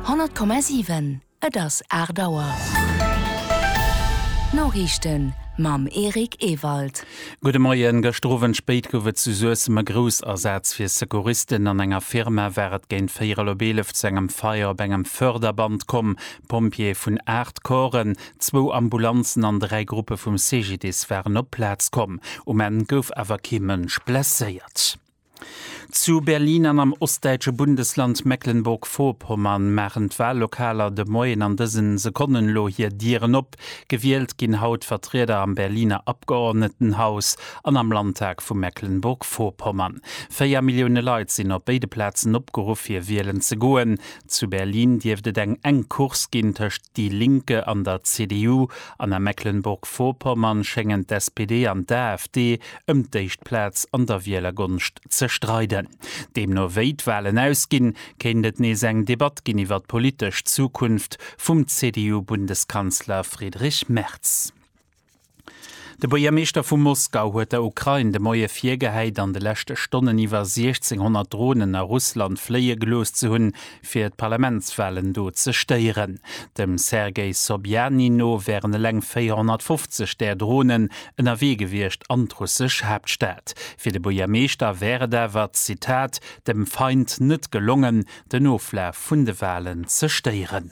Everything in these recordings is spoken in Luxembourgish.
100,7, Et ass 8 Auer. D'Noriichten mam Eric Ewald. Gudde Moien. Gëschter Owend spéit gouf et zu Suessem e Groussasaz fir Secouristen. An enger Firma war et géint véierel op eelef zu engem Feier op engem Förderband komm. Pompjeeë vun 8 Corpsen, zwou Ambulanzen an dräi Gruppe vum CGDIS waren op d'Plaz komm. Um Enn gouf awer kee Mënsch blesséiert. Zu Berlin an am ostdäitsche Bundesland Mecklenburg-Vorpommern maachen d'Wallokaler de Moien an dëse Sekonnen elo hir Dieren op. Gewielt ginn haut Vertrieder am Berliner Abgeordnetenhaus an am Landtag vu Mecklenburg-Vorpommern. Véier Millioune Leit sinn op béide Plazen opgeruff fir wielen ze goen. Zu Berlin dierft et eng enk Course ginn tëscht Die Linke an der CDU an a Mecklenburg-Vorpommern schéngen d'SPD an d'AfD ëm d'éischt Plaz an der Wielergonscht ze streiden. Deemno wéi d'Walen ausginn, kéint et nees eng Debatt ginn iwwer d'politesch Zukunft vum CDU-Bundeskanzler Friedrich Merz. De Buergermeeschter vu Moskau huet der Ukrain de Moie virgehäit, an de leschte Stonnen iwwer 1,600 Dronen a Russland fléie gelooss ze hunn, fir d'Parlamentswalen do ze stéieren. Dem Sergej Sobjanin no wären eleng 450 där Dronen ënnerwee gewiescht an d'russesch Haaptstad. Fir de Buergermeeschter wär et awer, Zitat, dem Feind net gelongen, den Oflaf vun de Walen ze stéieren.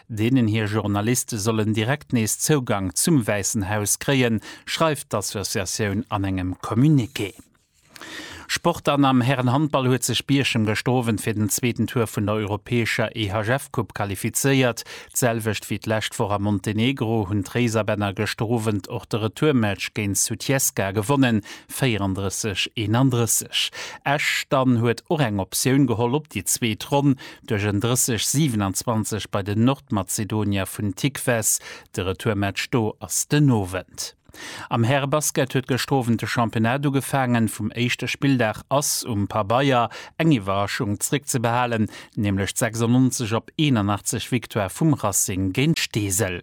deenen hir Journaliste sollen direkt nees Zougang zum Wäissen Haus kréien, schreift d'Associatioun an engem Communiqué. Sport An am Härenhandball huet sech Bierchem gëschter Owend fir den zweeten Tour vun der europäescher EHF-Coupe qualifizéiert. D'selwecht wéi d'lescht Woch a Montenegro hunn d'Réiserbänner gëschter Owend och de Retourmatch géint Sutjeska gewonnen, 34, 31. Esch dann huet och eng Optioun geholl op déi zweet Ronn duerch en 30, 27 bei den Nordmazedonier vun Tikves. De Retourmatch do ass den Owend. Am Härebasket huet gëschter Owend de Championnat ugefaangen. Vum éischte Spilldag ass um Pabeier eng Iwwerraschung zréckzebehalen, nämlech d'96 op 81 Victoire vum Racing géint Steesel.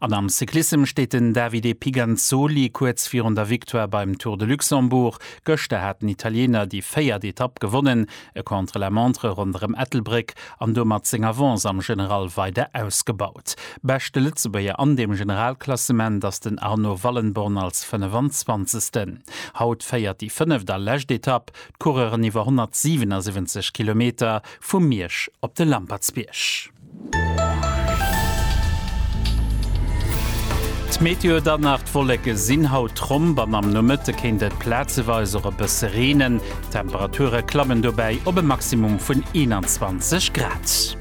An am Cyclissem steet den Davide Pigantzzoli kuerz virun der Victoire beim Tour de Luxembourg. Gëschter hat den Italiener déi véiert Etapp gewonnen, e Contre-la-montre ronderëm Ettelbréck an domat seng Avance am General weider ausgebaut. Beschte Lëtzebuerger an dem Generalklassement ass den Arno Wallenborn als 25. Haut féiert déi fënneft a lescht Etapp d'Coureuren iwwer 177 Kilometer vu Miersch op de Lampertsbierg. D'Meteo dann nach, D'Wolleke sinn haut tromp an am Nomëtte kéint et plazeweis och e bësse reenen. D'Temperature klammen dobäi op e Maximum vun 21 Grad.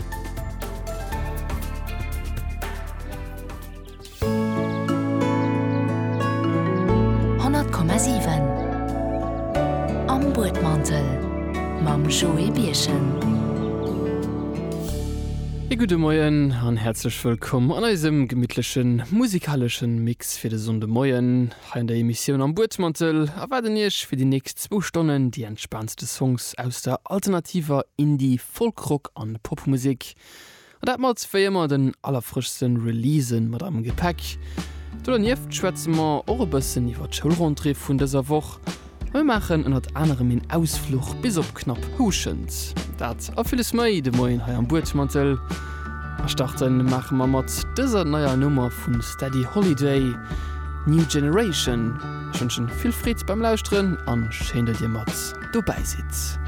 100,7 Am Buedmantel mam Joé Birchen. E gudde Moien an häerzlech wëllkomm an eisem gemittlechen musikaleschen Mix fir de Sonndemoien hei an der Emissioun Am Buedmantel erwaarden Iech fir déi nächst zwou Stonnen déi entspaantste Songs aus der alternativer Indie-, Folk-, Rock an Popmusek. An dat mat wéi ëmmer den allerfrëschste Releasen mat am Gepäck. Do dernieft schwätze mer och e bëssen iwwer d'Schoulrentrée vun dëser Woch. A mir maachen ënnert anerem een Ausfluch bis op knapp Houschent. Dat a villes méi de Moien hei am Buedmantel. A starte maache mer mat dëser neier Nummer vu Steady Holiday, New Generation. Ech wënschen vill Freed beim Lauschteren a schéin, datt dir mat dobäi sidd.